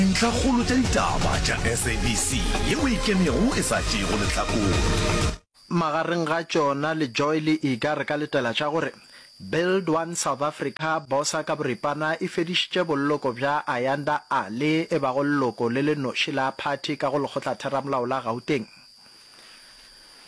Dintlhakgolo tša ditaba tša SABC ye o e kenego e sa tšeego lehlakore. Magareng ga tšona le Joy le Iga re ka letela tša gore, Build One South Africa, Bosa ka boripana e fedišitše bolloko bja Ayanda Alli e bago lleoko le le noši la phathi ka go Lekgotlatheramolao la Gauteng.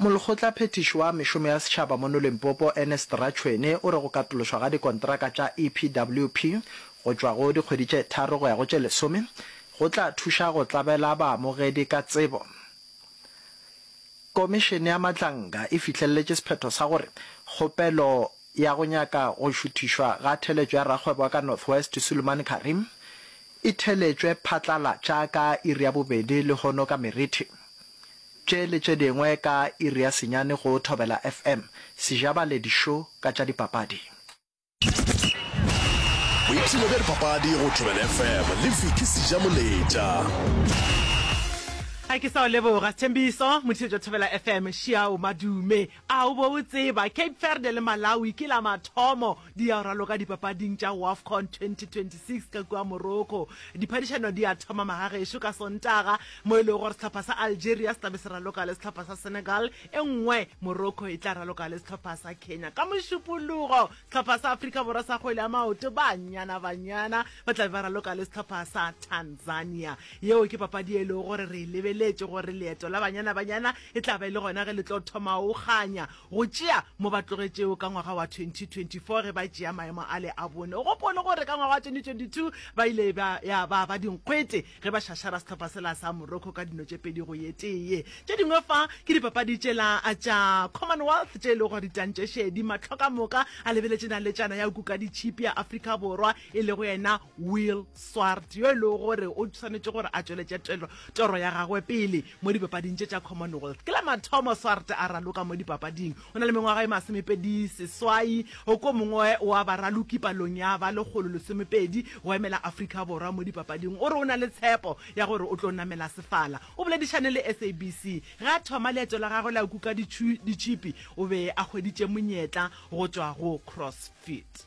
Molekgotlaphethiši wa Mešomo ya Setšhaba mono Limpopo, Ernest Ratšhwene, o re go katološwa ga dikontraka tša EPWP go tšwa go dikgwedi tše tharo go ya go tše lesome go tla thuša go tlabela baamogedi ka tsebo. Komišene ya Madlanga e fihlelletše sephetho sa gore kgopelo ya go nyaka go šuthišwa ga theletšo ya rakgwebo wa ka North West Suleman Karim e theletšwe phatlalatša ka iri ya bobedi lehono ka Merithi. Tše le tše dingwe ka iri ya senyane go Thobela FM, Sejabaledi Show ka tša dipapadi. Boipshino bja dipapadi go Thobela FM le Vicky Sejamoletša. Ga ke sa o leboga Sethembiso, mothišetšo Thobela FM, Shiao Madume. A o bo o tseba Cape Verde le Malawi ke la mathomo Di ya go raloka dipapading tša Wafcon 2026 ka kua Morocco. Diphadišano di ya thoma magagešo ka Sontaga, mo e lego gore sehlopha sa Algeria se tla be se raloka le sehlopha sa Senegal, e nngwe Morocco e tla raloka le sehlopha sa Kenya. Ka Mošupologo, sehlopha sa Afrika Borwa sa kgwele ya maoto, Banyana Banyana, ba tla be ba raloka le sehlopha sa Tanzania. Yeo ke papadi ye e lego gore re e lebeletše gore leeto la Banyana Banyana e tla ba e le gona ge le tlo thoma go kganya go tšea mo ba tlogetšego ka ngwaga wa 2024 ge ba tšea maemo ale a bone. O gopole gore ka ngwaga wa 2022 ba ile ba ya ba ba dinkgwete ge ba šašara sehlopha sela sa Morocco ka dino tše pedi go ye tee. Tše dingwe fa ke dipapadi tšela tša Commonwealth tše e lego ditantšešedi, mahlo ka moka a lebeletše naletšana ya Kukaditšhipi ya Afrika Borwa e lego yena Will Swart, yo e lego gore o swanetše gore a tšweletše toro ya gagwe pele mo dipapading tše tša Commonwealth. Ke la mathomo Swart a raloka mo dipapading. O na le mengwaga e masomepedi seswai, go ko mongwe wa baraloki palong ya ba lekgolo lesomepedi go emela Afrika Borwa mo dipapading. O re o na le tshepo ya gore o tlo namela sefala. O boledišane le SABC ge a thoma leeto la gagwe la kuka ditšhipi, o be a hweditše monyetla go tšwa go CrossFit.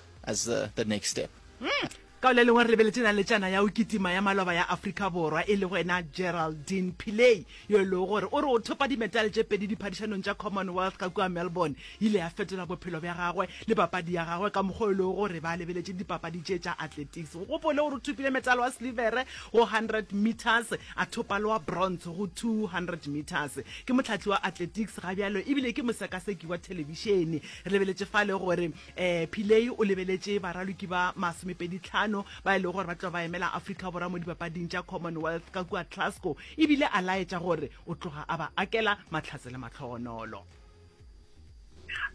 as the, the next step. Mm. ka o le lengwe re lebeletse na le tšana ya o kitima ya maloba ya afrika borwa e le go ena geraldine piley yo e lego gore o re o thopa dimetale tše pedi diphadišanong tša commonwealth ka kua melbourne ile ya fetola bophelo bja gagwe le papadi ya gagwe ka mokgwa o e lego gore ba lebeletše dipapadi tše tša athletics go gopole gore o thopile metale wa silivere go 100 meters a thopa le wa bronze go 200 meters ke motlhatli wa athletics ga bjalo ebile ke mosekaseki wa thelebišene re lebeletše fa le gore Pillay o lebeletše baraloki ba masomepeditlhano ba e lego gore ba tloga ba emela Afrika Borwa mo Dipapading tša Commonwealth ka kua Glasgow e bile a laetša gore o tloga a ba akela mahlatse le mahlogonolo.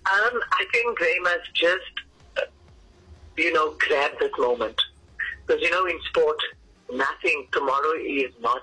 Um I think they must just you know grab this moment because you know in sport nothing tomorrow is not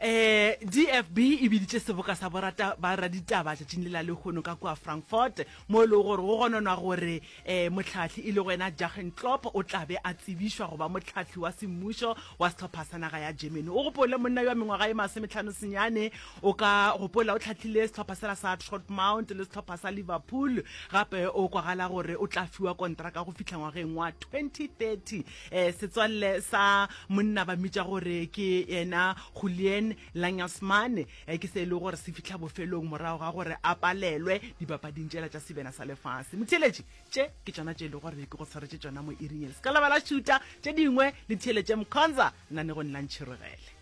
eh dfb e biditše seboka sa borata ba raditaba tšatšing le la lehono ka kua frankfurt mo e lego gore go gononwa gore um motlhatlhi e le go ena jagen clop o tlabe a tsebišwa go ba motlhatlhi wa semmušo wa setlhopha sa naga ya germany o gopole monna yo wa mengwaga e masometlhano senyane o ka gopola o tlhatlhile setlhopha sela sa trotmount le setlhopha sa liverpool gape o kwagala gore o tla fiwa kontraka go fitlha ngwageng wa 2030 Eh, setswalle sa monna ba mmitša gore ke yena Julian Langasmane eh, ke se e le gore se fitlha bofelong morago ga gore a palelwe dipapading tšela tša sebena sa lefase motheeletše tše ke tšona tše e le gore ke go tshwaretše tšona mo iringele se ka lebala šuta tše dingwe le theeletše mkhonza nna ne go nna ntšhirogele